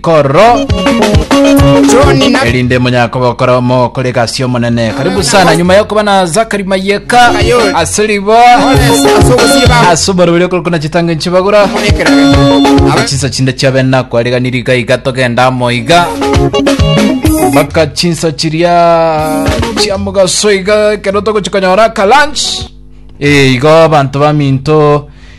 Koro John na erinde monyakoba okora omo kore gasi omonene karibu sana nyuma ya kuba na zakari mayeka asiribo Oles asogosiba asuborobire kuri kuna chitango nchibagura amonekerage. Aba chinsa chinde chiabena kwariganiri iga iga togenda amo iga mpaka chinsa chiria chia mugaso iga ekero togochikonyora ka lunch Eh, igo abanto baminto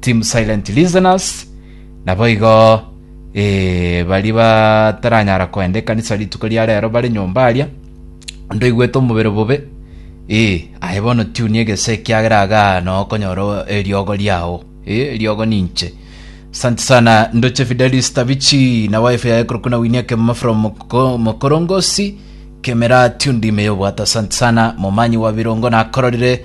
Team Silent Listeners, naboigo eh, baria bataranyara koenda ekanisa rituko ria rero bare nyomba aria, onde oigwete omobere bobe, eh, aye bono tiuni egese ekiagera agaa noo okonyora o- eriogo riao, eh, eriogo ninche. Asante sana Ndoche Fidelis Tabichi na wife yaye korokwa na Winnie Kemama from Moko- Mokorongosi Kemera Tundi Meyobwata asante sana momanyi wa birongo nakororire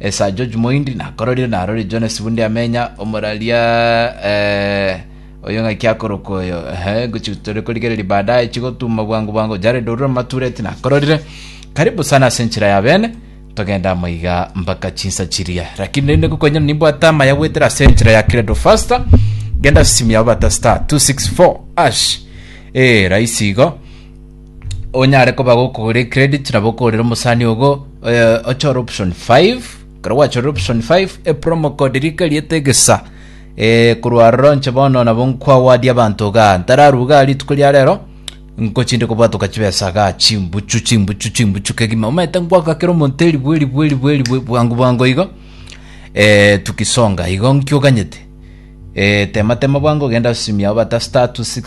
Esar George Moindi nakororire narorire Jonas Bunde amenya omoraria eh, oyo ng'aki akorokwa oyo ehe gochi tore korigereria baadaye chigotuma bwango bwango Jared Orura Matureti nakororire karibu sana ase enchera ya bene togenda moiga mpaka chinsa chiria lakini rende gokonyera nimbwate amaya gwetera ase enchera ya Credo Faster genda ase simu yao bata star 264 ash eh raisi igo onyare koba gokogora ecredit nabo okorera omosani ogo eh, ochore option 5 ekero gwachorire option 5 epromo code rika eriete egesa eh, korwa aroro nche bono nabo nkwawadia abanto iga ntararuga rituko ria rero nkochinde kobwatoka chibesa ga chimbuchu chimbuchu chimbuchu kegima omanyete nkwaka kera omonto eribwe eribwe eribwe eribwe bwango bwango igo eh, tukisonga igo nkioganyete eh, tema tema bwango genda simia obata star 264